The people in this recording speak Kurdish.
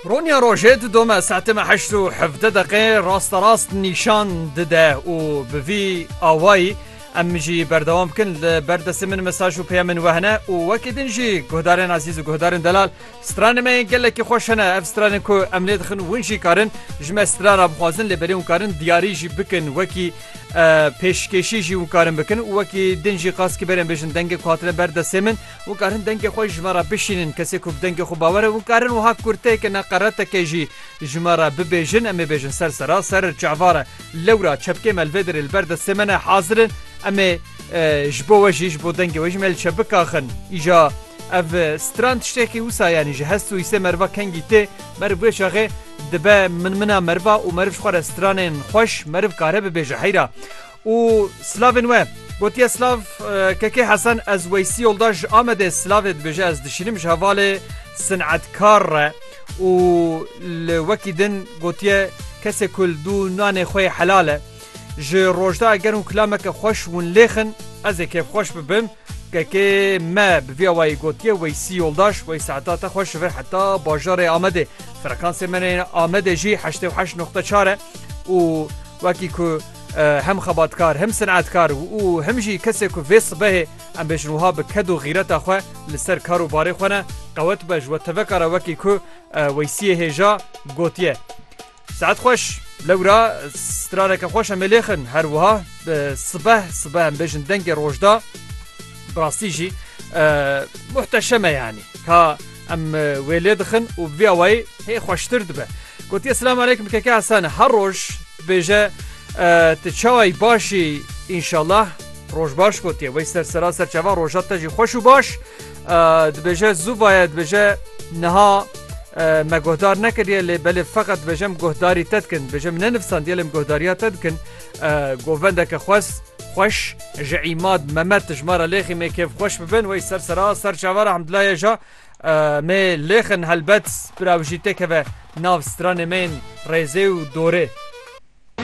Ronya rojê didome saetê me heşt û hevdeh deqê rasta rast nîşan dide û bi vî awayî em jî berdewam bikin li ber destê min mesaj û peyamên we hene û wekî din jî guhdarên ezîz û guhdarên delal stranên me yên gelekî xweş hene ev stranên ku em lê dixin win jî karin ji me strana bixwazin lê belê wan karin diyarî jî bikin wekî pêşkêşî jî wan karin bikin û wekî din jî qas kî berên bêjin dengê ku hatine ber destê min Wan karin dengê xwe ji me re bişînin. Kesê ku bi dengê xwe bawer e wan karin wiha kurteke neqereteke jî ji me re bibêjin. Em ê bêjin ser sera serir çavar e. Lewra çepkê me li vê derê li ber destê me ne hazir in. Em ê ji bo we jî ji bo dengê we jî me li çep bikaxin. Îja ev stran tiştekî wisa yanî ji hest û hîsê meriva kengî tê. Meriv vê çaxê dibe min-mina meriva û meriv ji xwe re stranên xweş meriv kare bibêje heyra. û silavên we gotiye silav Kekê Hesen ez Weysî Yoldaş ji Amedê silavê dibêje ez dişînim ji hevalê sinetkar re û li wekî din gotiye kesê ku li dû nanê xwe yê helal e ji rojda eger hûn kilameke xweş winlêxin ez ê kêfxweş bibim KK me bi vî awayî gotiye Weysî Yoldaş, Weys heta te xweş vir heta bajarê Amedê. Frekansê min ên Amedê jî heştê û heşt noqte çar e û wekî ku hem xebatkar hem sinetkar û hem jî kesê ku vê sibehê em bêjin wiha bi ked û xîreta xwe li ser kar û barê xwe ne qewet be ji we teveka re wekî ku Weysîyê hêja gotiye. Saet xweş lewra straneke xweş em ê lêxin her wiha sibeh sibeh em bêjin dengê rojda bi rastî jî muhteşeme yanî ka em wê lê dixin û bi vî awayî hê xweştir dibe gotiye silam aleykum keke Hesane her roj dibêje ti çawayî başî înşallah roj baş gotiye wey ser sera serçava roja te jî xweş û baş Dibêje zûvaye dibêje niha me guhdar nekiriye lê belê feqet dibêjem guhdarî te dikin dibêje min nenivsandiye lê guhdariya te dikin govendeke xwes xweş ji îmad memet tijmara lêxî mê kêf xweş bibin wey ser sera ser çava re hemdulaye ja mê lêxin helbet bira wijî têkeve nav stranê mêin rêzê û dorê.